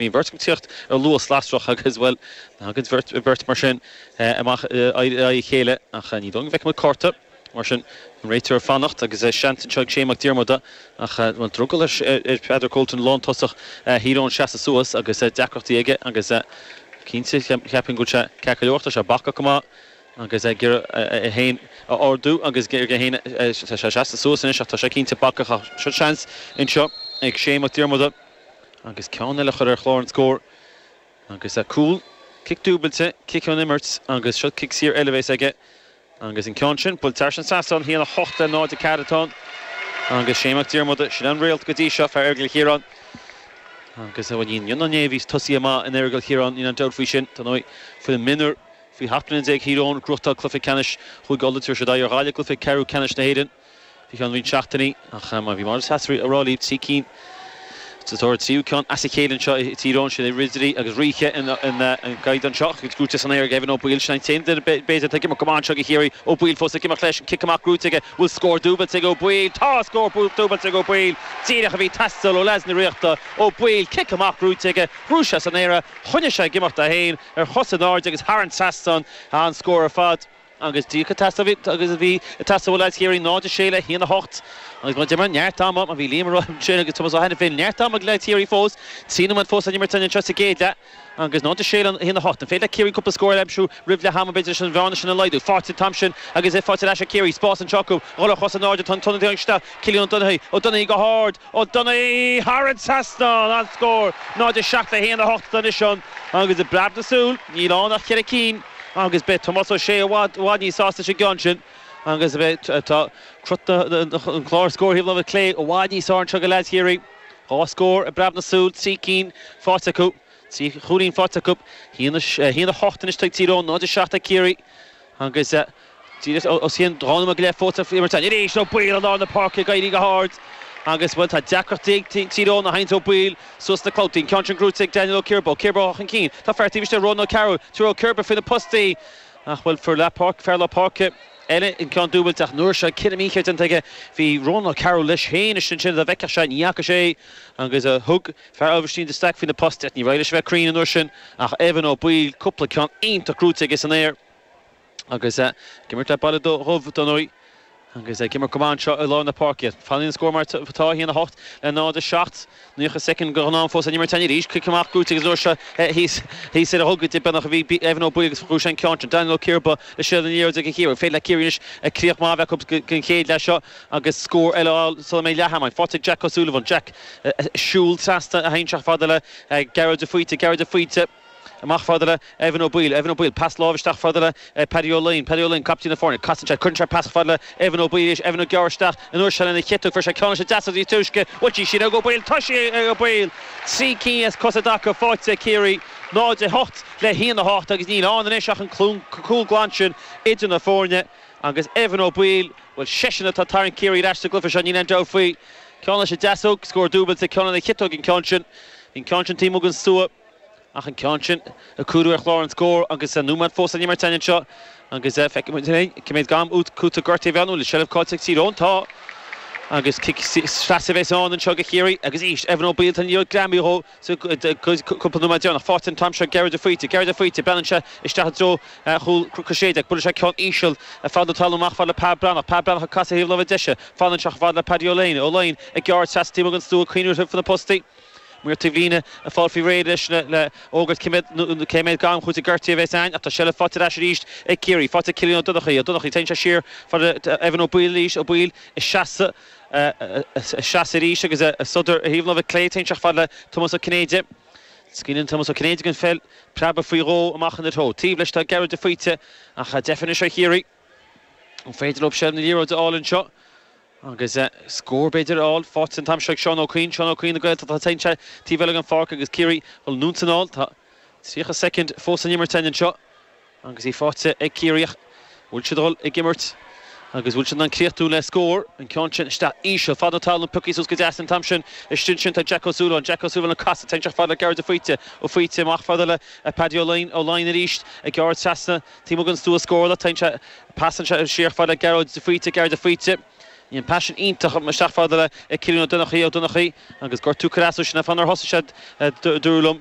Bhí beirt ag tíocht ar luas lasrach agus, bhuel, thagann beirt mar sin amach in aghaidh a chéile ach ní dóigh go bhfeicfidh muid cárta. Mar sin, an réiteoir ag fanacht agus seans anseo ag Shea Mac Diarmada ach bhuel, drogall ar Pheadar Colton lántosach Thír Eoghain seasamh suas agus deacrachtaí aige agus cinnte, cheapfainn go bhfuil sé ceart go leor, tá sé bacach go maith agus ag iarraidh é féin a ardú agus ag iarraidh é féin a, tá sé seasta suas anois ach tá sé cinnte bacach ach seans anseo ag Shea Mac Diarmada. agus ceann eile a chur ar chlár an scóir agus a' cúl, cic dúbailte, cic ón imirt agus seo cic saor eile a bhéas aige agus an ceann sin buailte thar an trasnán 1, 8 le 0, 4 atá ann agus Shea Mac Diarmada, sin an réalt go dtí seo, fear Aireagal Chiaráin agus a iníon Niona Néibh níos tosaí amach in Aireagal Chiaráin, níl aon dabht faoi sin, dar ndóigh, foireann mionúr faoi sheacht mbliana déag Thír Eoghain ag gnóthachtáil cluiche ceannais chúige Uladh tabharfaidh siad aghaidh ar Ghaillimh i gcluiche ceathrú ceannais na hÉireann. faoi cheann roinnt seachtainí, ach mar a bhí Máire Treasa ag rá lí trí cinn sa tóir ar an tríú ceann as a chéile anseo i Tír Eoghain, sin é Ridirí agus Ríthe ins an gcaighdeán seo. Gnóite san aer ag Evan Ó Baoill, sin an t-aon duine b'fhéidir atá ag imeacht go maith anseo do Chiarraí. Ó Baoill fós ag imeacht leis, an cic amach gnóite aige, an bhfuil scór dúbailte ag Ó Baoill? Tá scór dúbailte ag Ó Baoill, díreach a bhí ag teastáil ó leads na Ríochta. Ó Baoill, cic amach gnóite aige, ghnóthaigh sé san aer é, choinnigh sé ag imeacht é féin ar chos in airde agus thar an trasnán an scór ar fad. agus díreach an t-easnamh a bhí ag teastáil ó leaids Chiarraí, 0-6 le 1-8, agus mar a deirim neart ama, mar a bhí Liam Ó Sé agus Tomás Ó hAiniféin neart ama ag leaids Chiarraí fós, trí nóiméad fós le n-imirt anseo sa gcéad leath agus 0-6 le 1-8. An féidir le Ciarraí cúpla scór eile a aimsiú roimh leath ama, b'fhéidir, leis an bhearna sin a laghdú? Faighte an t-am sin agus á thabhairt ar ais ag Ciarraí. Spás anseo acu, dhul ar chos in airde, tá an t-ionadaí isteach Cillian Ó Duineachdha, Ó Duineachdha go hard, Ó Duineachdha thar an trasnán, an scór 0, 7 le 1, 8 anois ann agus i bpreab na súl níl ann ach ceithre cinn agus beidh Tomás Ó Sé i bhfad, i bhfad níos sásta leis an gceann sin agus tá cruth an chlár scóir ar thaobh na láimhe clé i bhfad níos fearr anseo ag leaids Chiarraí. Dhá scór i bpreab na súl, trí cinn faighte acu, trí chúilín faighte acu, 1, 8 anois ag Tír Eoghain, 0, 7 ag Ciarraí agus. Díreach os cionn dhá nóiméad go leith fágtha le n-imirt anois ag Ó Baoill i lár na páirce ag éirí go hard agus, bhuel, tá deacrachtaí ag Tír Eoghain a sheinnt Ó Baoill suas sna clabhtaí, an ceann sin gnóite ag Daniel Ó Ciarba, Ó Ciarba chun cinn, tá fear taobh istigh de Ronan O'Carroll, thug Ó Ciarba faoi na postaí ach, bhuel, fear lár páirce, fear lár páirce eile an ceann dúbailte ach an uair seo cinneadh mícheart déanta aige, bhí Ronan O'Carroll leis féin is ansin dá bhfeicfeadh sé ní fhaca sé é agus thug fear Aibhistín de Staic faoi na postaí ach ní raibh sé le bheith cruinn an uair sin ach Evan Ó Baoill, cúpla ceann iontach gnóite aige san aer. Agus é ag imirt le Baile Dubh dar ndóigh agus ag imirt go maith anseo i lár na páirce. Fanann an scór mar atá, 1-8 le 0-7. Nócha soicind go glan fós le n-imirt againn arís. Cic amach Gooch agus an uair seo thíos ar a thug idir beagnach a bhí Evan Ó Baoill agus dhúisigh an ceann sin. Daniel Ó Ciardha le seilbh na liathróide ag an chíor. An féidir le Ciarraí anois críoch maith a bheith acu don chéad leath seo agus scór eile á fháil sula mbeidh leath ama againn. Phortaigh Jack O'Sullivan. Jack ag siúl trasna isteach fad le Gearóid de Faoite. Gearóid de Faoite. Amach fad le Evan Ó Baoill, Evan Ó Baoill, pas láimh isteach fad le Paddy Ó Laighin, Paddy Ó Laighin, captaen na foirne, casann sé, cuireann sé pas fad le Evan Ó Baoill arís, Evan ag gearradh isteach, an uair seo lena chiotóg, fuair sé ceann leis an deasóg níos túisce buailte ansin ag Ó Baoill, toisí ag Ó Baoill, trí cinn as cosa i dtaca, faighte ag Ciarraí, 0-8 le 1-8 agus níl ann anois ach an cúl glan sin idir na foirne agus Evan Ó Baoill, bhuel seisean atá ag tarraingt Ciarraí ar ais sa gcluiche seo, níl aon dabht faoi, ceann leis an deasóg, scór dúbailte, ceann lena chiotóg an ceann sin, bhí an ceann sin taobh amuigh den stua. Ach an ceann sin a cuireadh ar chlár an scóir agus an nóiméad fós le n-imirt againn anseo agus feicfidh muid féin cé méid am cúitimh gortaithe a bheas ann. Seilbh cáillte ag Tír Eoghain. Tá agus cic trasna a bheas ann anseo do Chiarraí agus arís Evan Ó Baoill tá an liathróid greamaithe dhó sa gcúpla nóiméad deireanach. Faighte an t-am seo Gearóid de Faoite. Gearóid de Faoite, breathnann sé isteach i dtreo chúl Chris Shéide ach buaileann sé ceann íseal feadh na talún amach fad le Pa Breathnach. Pa Breathnach ag casadh ar thaobh láimhe deise. Fanann sé chomh fada le Paddy Ó Laighin. Ó Laighin ag gearradh trasna taobh amuigh den stua, coinnithe roimh na postaí. Maor taobhlíne ag fáil faoi réir anois le fógairt cé méid am cúitimh gortaithe a bheas ann ach tá seilbh faighte ar ais arís ag Ciarraí. Faighte ag Cillian Ó Donnchaidh. Ó Donnchaidh, téann sé siar fad le Evan Ó Baoill arís. Ó Baoill ina sheasamh arís agus ag sodar ar thaobh an láimhe clé. Téann sé fad le Tomás Ó Cinnéide. Scaoileann Tomás Ó Cinnéide don pheil preabadh faoi dhó amach ina threo. Taobh leis tá Gearóid de Faoite ach deifir anois ar Chiarraí. An féidir leo seilbh na liathróide a fháil anseo? Agus scór b'fhéidir a fháil faighte an t-am seo ag Seán Ó Cuinn, Seán Ó Cuinn na Gaeltachta atá tagtha taobh eile den pháirc agus Ciarraí ag dul anonn 's anall. Tá 30 soicind fós le n-imirt againn anseo agus í faighte ag Ciarraí ach bhfuil siad ag dul ag imirt agus bhfuil siad in ann críochnú le scór? An ceann sin isteach íseal, feadh na talún, pioctha suas go deas an t-am sin. Istigh ansin tá Jack Ó Súilleabháin, Jack Ó Súilleabháin ag casadh, téann isteach fad le Gearóid de Faoite, de Faoite amach fad le Paddy Ó Laighin, Ó Laighin arís ag gearradh trasna, Taobh amuigh den stua, scór ach, téann sé, pasann sé siar fad le Gearóid de Faoite, Gearóid de Faoite, an pas sin iontach isteach fad le Cillian Ó Donnchaidh, Ó Donnchaidh, agus gortú, cad as sin, fan ar thosaigh sé, dúradh liom,